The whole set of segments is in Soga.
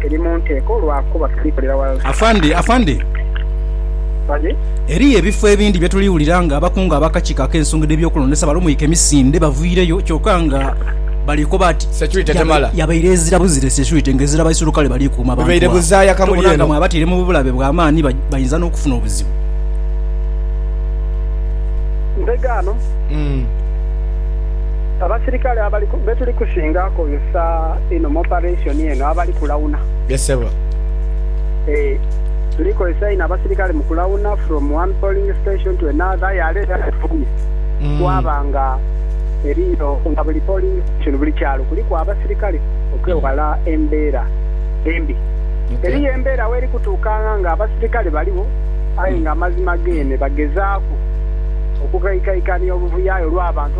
Eri mu nteeko lwakuba tulikolera ghalala. Afande, afande. Bali. Eriyo ebifo ebindi bye tuli wulira nga abakungu ab'akakiiko ak'ensonga edh'ebyokulondesa balumwike emisinde baviireyo kyoka nga bali koba nti Securite temala. Yabaire ezira buzira securite nga ezira baisulukale bali kuuma abantu Bibaire abo. buzaaya kamuli Tubona nga eno. mwabataire mu bulabe bwa maani ba- bainza n'okufuna obuzibu. Mbega ano. Abasirikale abali be tuli kusinga kozesa einho mu operation eno abali kulawuna. Yes sebo. Eeh tuli kozesa inho abasirikale mu kulawuna from one polling station to another aye are era atufubye twaba nga eriyo nga buli polling station buli kyalo kuliku abasirikale okwewala embera embi. Eriyo embera weri kutuukanga nga abasirikale baligho aye nga amazima gene bagezaku okukaikaikania obuvuyo aye olwa bantu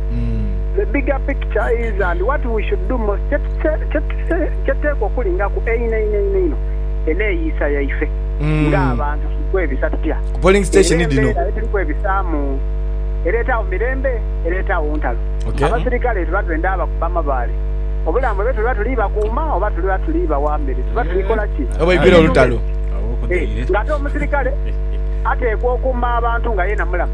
The bigger picture is and what we should do most kyetuteekwa okulingaku einho einho einho einho eneeyiisa yaife ng'abantu tuli kwebisa tutya era embeera ye tuli kwebisaamu ereetawo mirembe ereetawo ntalo. Abasirikale tuba twenda bakuba amabaale obulamu bwaibwe tuba tuli bakuuma oba tuba tuli bawa mmere tuba tuli kola ki? Ng'ate omusirikale ateekwa okuuma abantu nga yeena mulamu.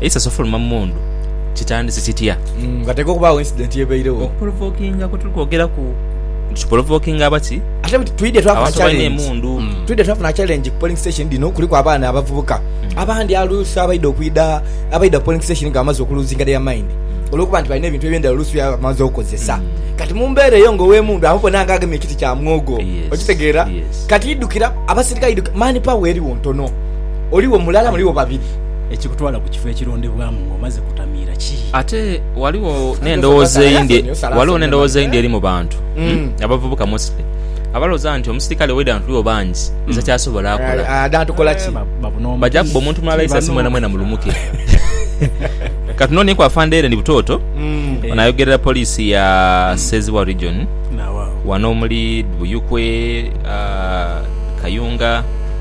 Eisaso ofuluma mu mundu kitandise kitya? Mm, Ghateekwa okubaagho incident ebairegho. Okuprovokinga kwe tuli kwogeraku nti kiprovokinga aba ki? Ate buti twidha twafuna Abantu abalina challenge. emundu. Mm. Twidha twafuna challenge ku polling station dhino kuliku abaana abavubuka abandi aluusi abaidha okwidha abaidha ku polling station nga bamaze okuluzinga their mind olwokuba nti balina ebintu eby'endhaghulo oluusi byebaba bamaze okozesa. Kati mu mbeera eyo nga ow'emundu amubona nga agemye ekiti kya mwogo. Yes, Okitegeera? yes. Kati idhukira abaserikale idhukira mani power eriwo ntono. Oliwo mulala muliwo babiri. ekikutwala ku kifo ekirondebwamu ng'omaze kutamiira ki? Ate ghaligho n'endhowooza eyindi, ghaligho n'endhowooza eyindi eri mu bantu, abavubuka mostly, abalowooza nti omusirikale waidha nga tuliwo bangi iza ky'asobola akola. Baja kubba omuntu mulala isasi mwenamwena mulumuke. Katunonieku Afande Ellen Butoto, ono ayogerera poliisi ya Ssezibwa Region wano omuli Buyukwe, Kayunga,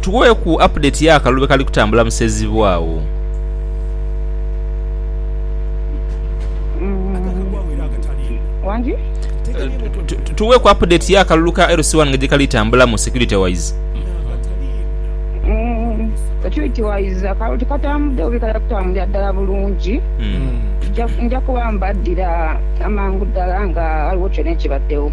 Tuweeku update ya kalulu bwekali kutambula mu Sezibwa agho. Tuweeku update ya kalulu ka LC One nga gyekali tambulamu security wise. Security wise akalulu tikatambudde bubi kali kutambulira ddala bulungi. Nja kuba mbaddira amangu ddala nga ghaligho kyona ekibaddewo.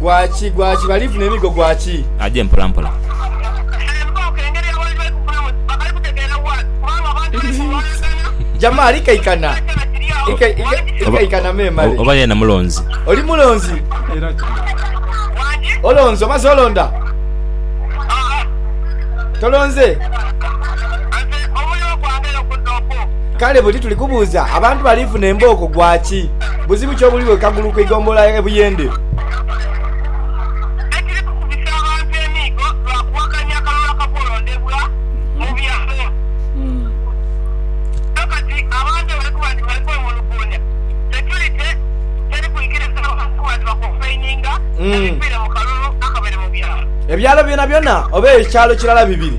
Gwaki, gwaki, bali funa emigo gwaki? Aje mpola mpola. Jamaa ali kaikana. Ika, ika, ikaikana memale. Oba yena mulonzi. Oli mulonzi. Olonzi, omaze olonda? Tolonze? Kale buti tuli kubuuza, abantu bali funa embooko gwaki? Buzibu ki obuli bwe kagulu ku igombolola e Buyende? Ebyalo byonabyona oba ekyalo kirala bibiri?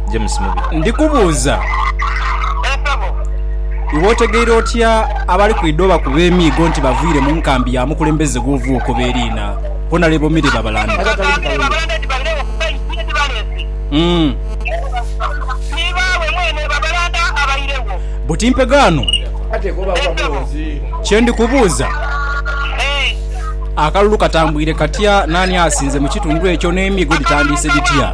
James Mubi. Ndi kubuuza, iwe otegeire otya abali kwidha obakuba emiigo nti baviire mu nkambi ya mukulembeze gw'ova okoba eriina Hon. Milly Babalanda? Abaana ba Milly Babalanda nti baidha bakuba ensi ye dhibaleese. Tibaagho mwene Babalanda abairegho. Buti mpegaano? Ee sebo. Kye ndi kubuuza, Ee. akalulu katambwire katya, naani asinze mu kitundu ekyo n'emiigo dhitandiise dhitya?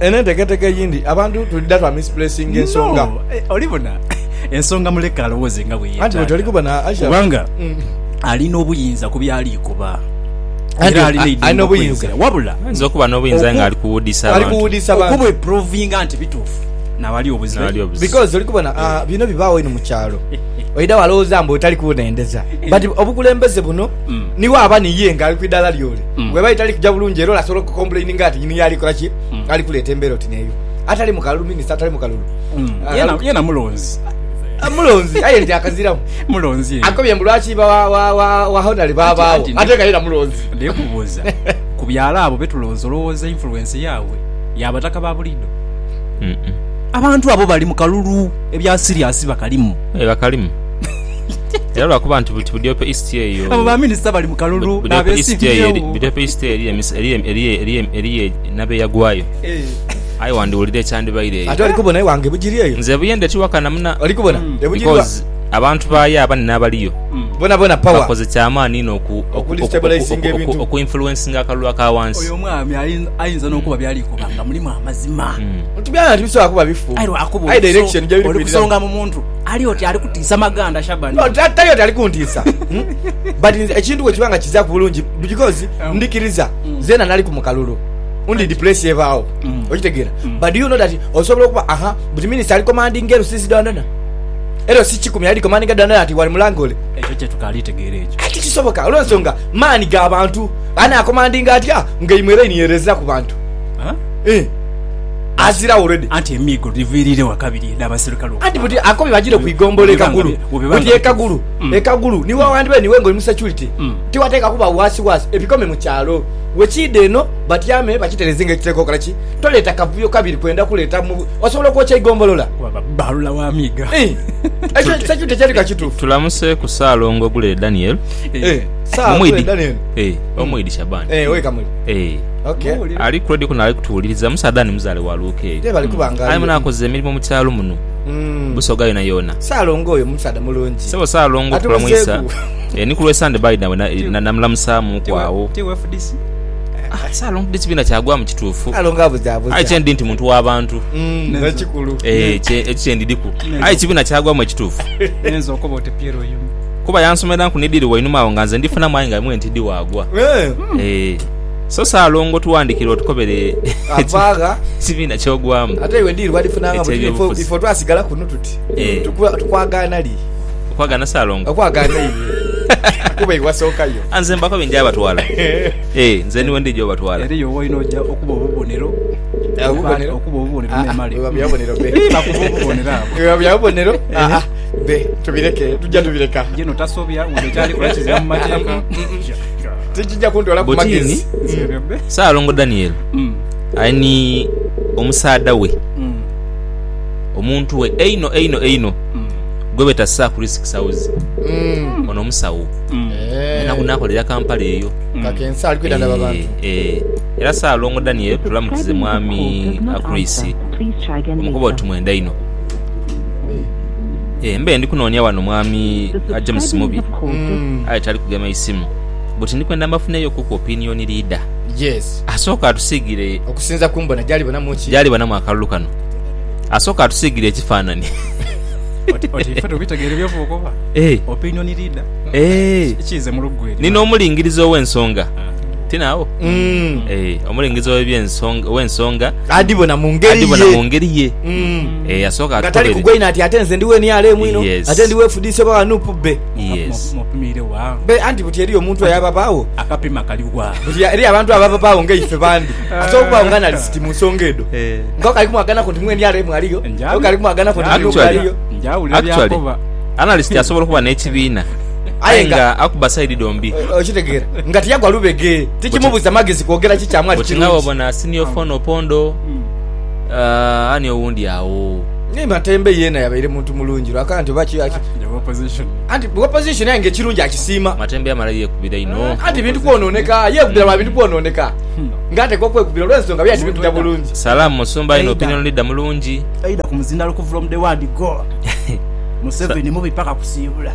Eno enteketeeka eyindi abantu twidha twa misplacinga ensonga. No, oli bona, ensonga muleke alowooze nga bwe yeetaaga, kubanga ali n'obuyinza ku by'ali kuba era ali n'eidhembe okweyogera. Wabula okubweprovinga nti bituufu na wali obuzibu, because oli kubona bino bibaawo eno mu kyalo, oidha walowooza mbu otali kunhendeza but obukulembeze buno niwe aba ni ye nga ali ku idala ly'ole. Mm. Bweba etali kuja bulungi era olasobola okukomplaininga ati nyini yo ali kola ki? Mm. Ali kuleeta embeera oti neeyo. Atali mu kalulu minister atali mu kalulu. Mm. Ah, Yena kalulu- yena mulonzi. Ah, mulonzi aye nti akaziramu. Mulonzi ye. Akobye mbu lwaki ba wa wa wa wa honali babaawo Anti- anti- ate nga yena mulonzi. Naye kubuuza ku byalo abo betulonzi olowooza influence yaabwe ya bataka ba bulido? Mm-mm. Abantu abo bali mu kalulu ebya serious bakalimu. Eh, bakalimu era lwakuba nti buti budyopa east eyo abo ba minister bali mu kalulu nabesimbyewo budyopa east eriyo nabeyagwayo eh. aye wandiwulira ekyandibaire eyo ate olikubona ewange bugiri eyo nze buye ndetiwakana muna olikubona mm. ebugiri abantu bayo abani nabaliyo mm. bona bona power bakoze kyamaani ino oku okulistabilizinga ebintu oku influencing akalulu akawansi oyo omwami ayinza nokuba byali kuba nga mulimu amazima mm. nti byali nti bisobola kuba bifu ayi direction gye biri kusonga mu muntu Ali oti ali kutiisa maganda Shaban. No ta- tali oti ali kuntiisa mm, but nze ekintu bwekiba nga kizaaku bulungi because ndikiriza zeena naliku mu kalulu ndi depress ebaawo okitegeera but do you know that osobola okuba aha but minister ali commanding ero sisi dandana ero si kikumi ali commanding dandana ati wali mulanga ole Ekyo kyetukaali tegeera ekyo. Aye tikisoboka olwensonga maani ga bantu anakomandinga atya nga imwe era iniereza ku bantu Huh? Eh. aziragho already. Anti emiigo dhiviiriire wa kabiri edh'abaserikale okufa. Anti buti akobye bajiire ku igombolola e Kagulu. Buti e Kagulu, e Kagulu ni wewandibere niiwe ng'oli mu security, tiwateekwa kuba waasiwaasi, ebikome mu kyalo. Wekiidha eno batyame bakitereeze ng'ekiteekwa okola ki. Toleeta kavuyo kabiri kwenda kuleeta mu. Osobola okwokya eigombolola? Waba baalula wa miiga. Ii, Ekyo security ekyali ka kituufu. Tulamuseeku Ssaalongo Gule Daniel. Eeh, Sir Gule Omwidi. Daniel. Eeh, Omwidi Shaban. Eeh, ow'e Kamuli. Eeh. Okay. Ali ku radio kuno ali kutuwuliriza musaadha ni muzale wa luuka eyo. Ye bali kuba nga. Aye muna akoze emirimu mu kyalo muno. Mm. Busoga yona yona. Salongo oyo musaadha mulungi. Sebo salongo tukula muisa. Eh ni kulwe Sunday by nawe na namulamusa mu kwawo. Ti FDC. Ah, salongo disi bina kyagwa mu kitufu. Salongo abuza abuza. Aye kyendi nti muntu wa bantu. Mm. Ne kikulu. Eh, kye ekyendi diku. Aye kibina kyagwa mu kitufu. Nenzo okobote Piero yumi. Kuba yansomera nku nidiri wainuma awo nga nze ndifuna mwainga mwe ntidi wagwa. Eh. Eh. So Salongo tuwandikire otukobere ekibiina kyogwamu ekyebyobufuzi. Okwagana Salongo? A Nze mbakobe nja batwala. Eeh nze niwe ndija obatwala. Tikija kuntwala ku Butini. magezi. Nserebe. Saalongo Daniel Mm. ali ni omusaadha we, Mm. omuntu we einho einho einho Mm. gwebeeta Sir Chris Kisawuzi. Mm. Ono musawo Mm. Eh, era nakolera Kampala eyo. Kakensa ali kwidandaba Eh, abantu. eh. Era Saalongo Daniel tulamukize mwami Chris omukuba oti mwenda inho. Eh, mbe ndi kunoonia wano mwami ah, James Mubi Mm. aye tali kugema isimu. buti ndi kwenda mbafuneyo kuku opinion leader Yes. asooke atusiigire Okusinza ku mbona gy'alibonamu ki? gy'alibonamu akalulu kano. Asooke atusiigire ekifaanani. Oti oti ife tubitegeere by'ova okoba? Eh. Opinion leader? Eh. Ki- Kiize mu luggu eryo. Ni n'omulingiriza ow'ensonga. Ah. Tino agho? Mm. Eh, omulingiriza ow'ebyensonga, ow'ensonga Adibona mu ngeri adibona mu ye. ngeri ye. Mm. Eh, asooke Nga tali atutobere. kugwa inho ati ate nze ndi wa NRM ino, Yes. ate ndi wa FDC oba wa nup bbe. Yes. Mopimiire wa? Be, anti buti eriyo omuntu aye ababaawo. Akapima kali wa? Buti eriyo abantu abababaawo nga ife bandi. Ate okubaawo nga nali siti mu nsonga edho. Eh. Nko kali kumwaganaku nti mwene alemu aliyo. Njawulo. Nko kali kumwaganaku nti Nuupu Actually. aliyo. Njawulira Actually, byakoba. analyst asobola okuba n'ekibiina Aye aye nga- nga akuba side dhombi. O- Okitegeera? Nga tiyagwa lubege. Tikimubuza magezi kwogera ki kyamu ali Buti nga kirungi. bwobona senior phone opondo, ah, ani owundi awo. Naye Matembe yeena yabaire muntu mulungi lwakana nti oba ki- ki- Ewa opposition. Anti bwa opposition aye nga ekirungi akisiima. Matembe yamala yekubira inho. Anti ebintu kwonooneka. Yekubira lwa bintu kwonooneka. Nga atekwa okwekubira olw'ensonga byaali tibitudha bulungi. Salaam musumba inho opinion leader mulungi. Either ku muzindalo ku from the word go Museveni mubi paka kusiibula.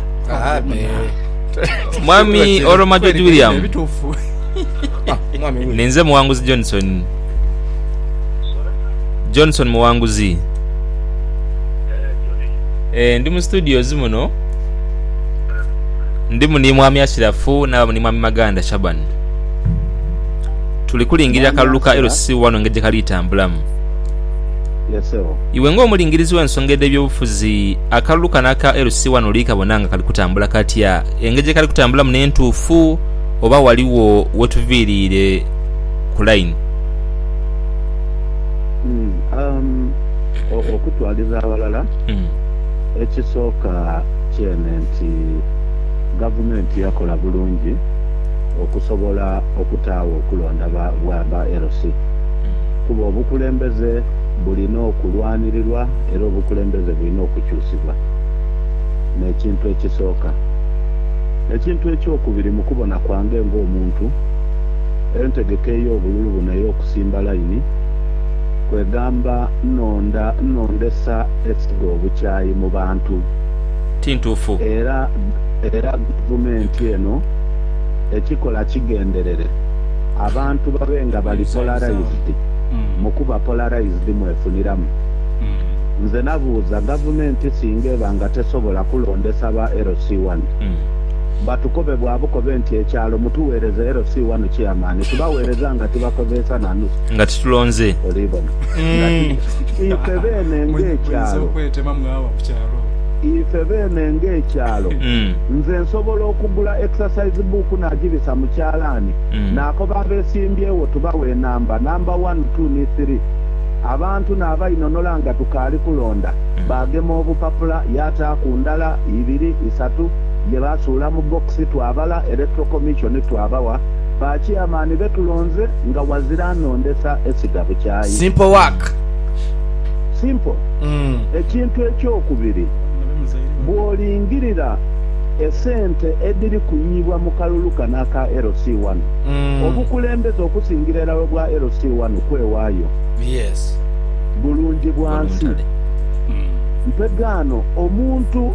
Mwami Oromajoji William. Ninze Muwanguzi Johnson. Johnson Muwanguzi. Eh, ndi mu studios muno ndimu ni mwami Ashirafu nabamu ni mwami Maganda Shaban tuli kulingirira kalulu ka LC wano engeri gyekali tambulamu iwe ng'omulingirizi w'ensonga edh'ebyobufuzi akalulu kano aka LC wano oli kabona nga kali kutambula katya engeri gyekali kutambulamu n'entuufu oba waliwo wetuviiriire ku line. Okutwaliza aghalala, ekisooka kyene nti Gavumenti yakola bulungi okusobola okutaagho okulonda bwa ba LC kuba obukulembeze bulina okulwanirirwa era obukulembeze bulina okukyusibwa n'ekintu ekisooka. Ekintu ekyokubiri mu kubona kwange ng'omuntu, Entegeka ey'obululu buno ey'okusimba laini, kwegamba nnonda nnondesa esiga obukyayi mu bantu, ti ntuufu. Era era gavumenti eno ekikola kigenderere abantu babe nga bali polarized mu kuba polarized mwefuniramu. Nze nabuuza gavumenti singa eba nga tesobola kulondesa ba LC1, batukobe bwa bukobe nti ekyalo mutugheereze LC wanu Chairman tubagheereza nga tibakozeesa na nusu. Nga titulonze. Oliibona. Nga ti. Ife beene ng'ekyalo. Ife beene ng'ekyalo. Nze nsobola okugula exercise book naagibisa mu kyalaani naakoba abeesimbyewo tubawe enamba, namba wanu, tu ni thiri. Abantu naabainonola nga tukaali kulonda. Baagema obupapula yaataaku ndala, ibiri, isatu. ye baasuula mu bbokisi twabala Electoral Commission twabawa ba Chairman be tulonze nga wazira anondesa esiga bukyayi. Simple work. Simple. Ekintu eky'okubiri, bw'olingirira esente edhiri kuyiibwa mu kalulu kano aka LC One, obukulembeze okusingira irala obwa LC One kwewaayo bulungi bwa nsi. Mpegaano omuntu.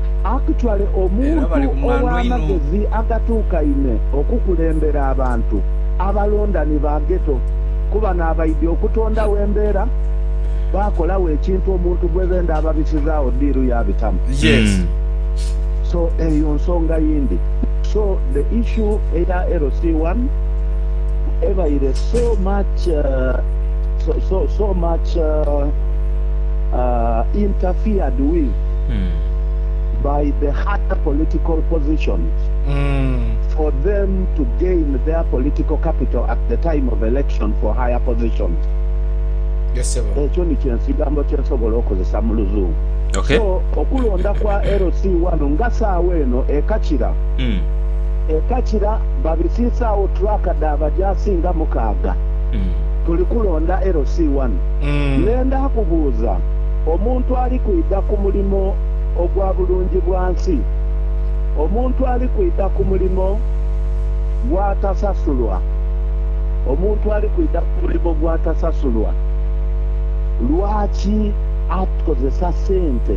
akutwale omuntu ow'amagezi agatuukaine okukulembera abantu abalonda ni ba Ghetto kuba n'abaidhi okutondagho embeera baakolagho ekintu omuntu gwe benda ababisizaagho ddiiru yaabitamu. So eyo nsonga yindi. So the issue eya LC one ebaire so much so so much interfered with. by the higher political positions for them to gain their political capital at the time of election for higher positions. Ekyo nikyo ensigambo kye nsobola okozesa mu Luzungu. So, okulonda kwa LC wano nga saagho eno ekakira, ekakira babisiisaagho track dha baja asinga mukaaga. Tuli kulonda LC wano. Nenda kubuuza. omuntu ali kwidha ku mulimo ogwa bulungi bwa nsi, omuntu ali kwidha ku mulimo gw'atasasulwa, omuntu ali kwidha ku mulimo gw'atasasulwa. Lwaki atukozesa sente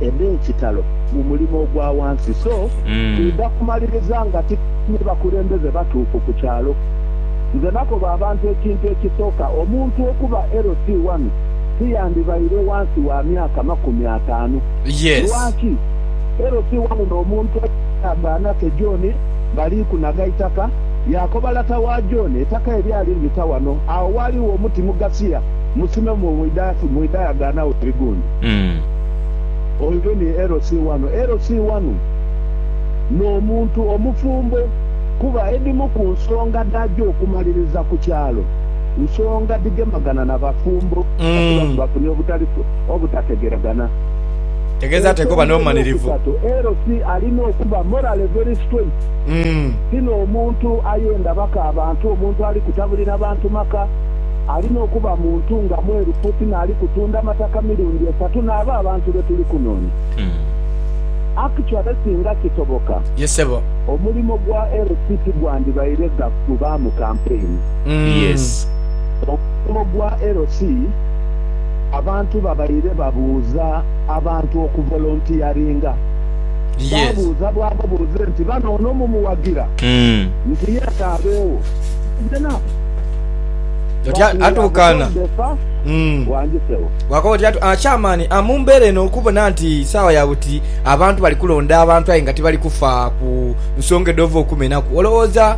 edh'ekitalo mu mulimo ogwa ghansi? So twidha kumaliriza nga titufunye bakulembeze batuufu ku kyalo. Nze nakoba abantu ekintu ekisooka omuntu okuba LC1. tiyandibaire ghansi wa myaka makumi ataanu. Lwaki? Elo si wamu n'omuntu ey'endagaano ate John bali kunaga eitaka. Yaakoba lata wa John, Eitaka elyo ali lita wano, agho ghaligho omuti mugasia, musime mu idayagaano agho ebigundi. Oyo ni elo si wano. Elo si wamu n'omuntu omufumbo, kuba edhimu ku nsonga dhaja okumaliriza ku kyalo. nsonga dhigemagana na bafumbo kasita bwe bafunye obutalifu obutategeragana. Ensonga ey'okusatu, Erosi alina okuba morally very straight. Ti n'omuntu ayenda baka abantu, omuntu ali kutabulira bantu maka. Alina okuba muntu nga mwerufu, ti n'ali kutunda mataka mirundi esatu n'abo abantu be tuli kunoonya. Actually singa kisoboka, omulimo gwa Erosi tigwandibaire gwa kuvaamu kampeyini. Yes. Omulimu gwa LC, Abantu babaire babuuza abantu okuvolontiyaringa. Baabuuza bwaba buuze nti, Bano ono mumuwagira nti yete abeewo? Kigenaa Otya atuukaana? Wangi sebo. Bwakooba otya atu, ah, Chairman, ah, mu mbeera eno okubona nti saawa ya buti abantu bali kulonda abantu aye nga tibali kufa ku nsonga edhova okumenaku, olowooza